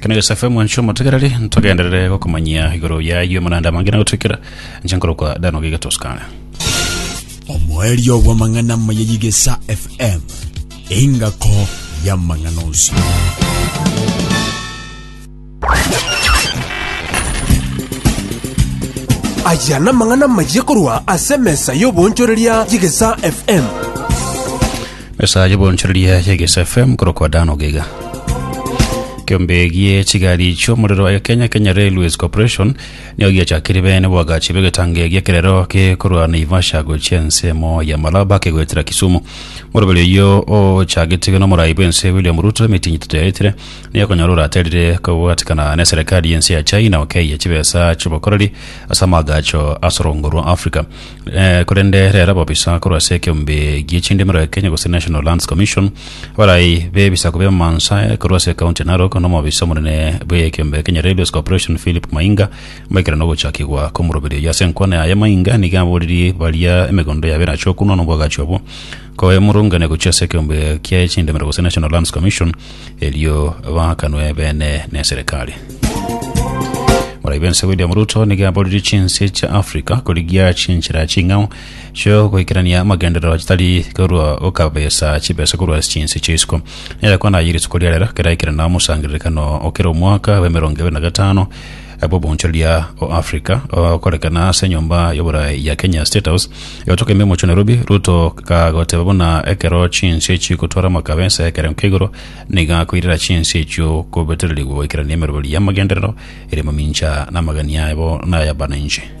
Kene Yosefe mwanche omotegereri, ntogenderere gokomanyia igoro y'ayio amananda amange na gotwekera, inche nkorokwa Dan ogiga Toscana. Omoerio bw'amang'ana amaya y'Egesa FM, engako y'amang'ana onsi. Aya namang'ana amaya korwa ase emesa y'oboonchoreria y'Egesa FM. Esaa y'obonchoreria ya Gesa FM korokwa Dan Ogega. Kiombe gie chigari chi'omorero ya Kenya Kenya Railways Corporation nigo giachakire bene boagachi b'egetango egia ekerero gekorwa Naivasha gochia ensemo ya Malaba kegoetera Kisumu. Moroberi oyio ochagetigwe n'omorai bw'ense William Ruto emitinyi etato yaetire nigo ekonyora oraterire kobwatikana n'eserekari y'ense ya China okeyia chibesa chi'obokoreri ase amaagacho asorongorwa Africa. Eh, korende rero ababisa korwa ase ekeombe gie chindimero ya Kenya gose National Lands Commission abarai b'ebisaku bi'amansa eh, korwa ase ekaunti ya Narok n'omobisa omonene bw'ekeombe Kenya Railways Corporation Philip Mainga maikerano ogochakigwa kw'omoroberio oyo ase enkwana yaye Mainga nigo aboririe baria emegondo yabo erache okunwa n'obwagachi obwo koemurungania gochia ase ekeombe kiaye chindimero gose National Lands Commission erio baakanwe ebeene neserekari. Morai bense William Ruto nigo aboririe chinse chia Africa korigia chinchera ching'ao chio goikerania amagenderero chitari korwa gokabesa chibesa korwa ase chinse chia isiko. Nere kwana ayire isiko ria rero keraikerana omosangererekano okera omwaka bwa emerongo ebere na gatano bw'obonchoreria o Africa okorekana ase enyomba y'oboraai ya Kenya State House egotoka ime omochie o Nairobi, Ruto kagoteba buna ekero chinswe echio chigotwara amakabe ense y'ekerengo kia igoro nigo akoirera chinswe echio kobetererigwa goikerania emeroberi y'amagenderero ere momincha na amagani aye bo nay'abananchi.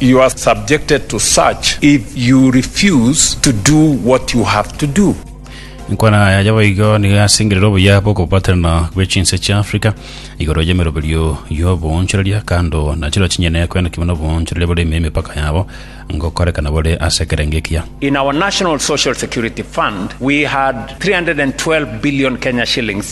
You are subjected to search if you refuse to do what you have to do. Enkwana yaye boigo nigo yasengerire obuya bw'okobaterana bwe chinse chia Africa igoro y'emeroberio y'oboonchoreria kando na chiro chinyene kwenokigwa n'oboonchoreria bore ime y'emepaka yabo ngokorekana bore ase ekerengo ekiya. In our National Social Security Fund, we had 312 billion Kenya shillings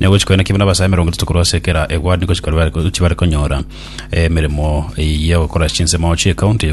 na ogochia koina kibe n'abasae emerongo etato korwa ase kera egwani gochia bare konyora emeremo y'ogokora chinsemo chi'ekaunti eye.